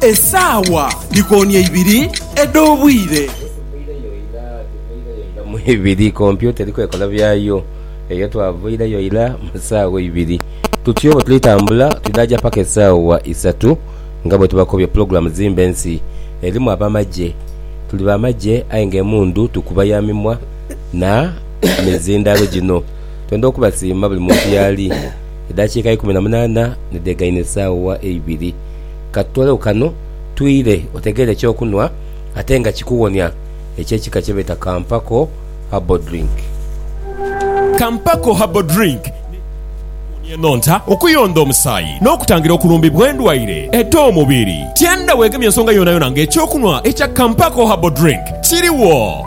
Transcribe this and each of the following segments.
Esaawa dhikooni eibiri edh'obwire. ibiri kompyuta eri kwekola byayo eyo twavaireyo ira mu saawa ibiri tutyoo bwetuli tambula tudhaja paka esaawa isatu nga bwetubakobye pulogulamu zimba ensi erimu abamagye tuli bamagye aye nga emundu tukuba ya mimwa na mizindhalo gino. Twendha okubasiima buli muntu yaali. Edhakiika eikumi na munaana ni dhegaine esaawa eibiri. Ka tutoolegu kano twire otegeere eky'okunhwa ate nga kikuwonia eky'ekika kye beeta Kampako Herbal Drink. Kampako Herbal Drink ni dhingi okuwonia enhonta, okuyondha omusaayi n'okutangira okulumbibwa endwaire edh'omubiri. Tienda weegemye nsonga yoonayona ng'eky'okunhwa ekya Kampako Herbal Drink kiriwo.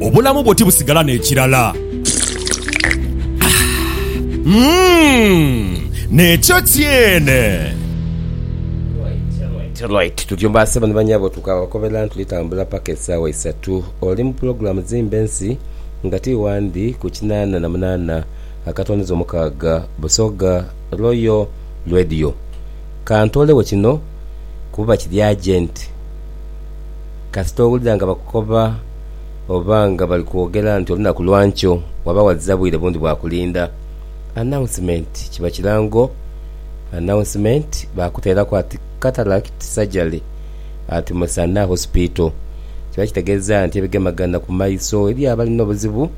Obulamu bwo tibusigala n'ekirala. Umm! N'ekyo kyene. Right right tutyo baasebo ni banyabo tukabakoberera nitulitambula paka esaawa isatu oli mu pulogulaamu zimba ensi nga ti wandi ku kinaana na munaana akatonyeza omukaaga Busoga Royal Radio. Ka ntoolegho kino kuba kiri agenti. Kasita owulira nga bakukoba oba nga bali kwogera nti olunaku lwa nkyo waba waziza bwire bundi bwa kulinda announcement kiba kirango announcement bakuteeraku ati Cataract surgery at Musana Hospital kiba kitegeeza nti ebigemagana ku maiso eri abalina obuzibu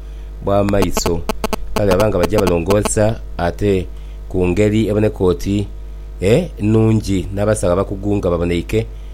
bwa maiso kale baba nga baja balongoosa ate ku ngeri eboneka oti enungi n'abasawo abakugu nga baboneike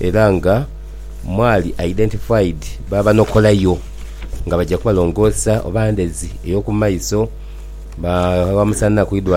era nga mwali identified babanokolayo nga baja kubalongoosa oba ndhezi eyokumaiso babamusa naku idwaliro.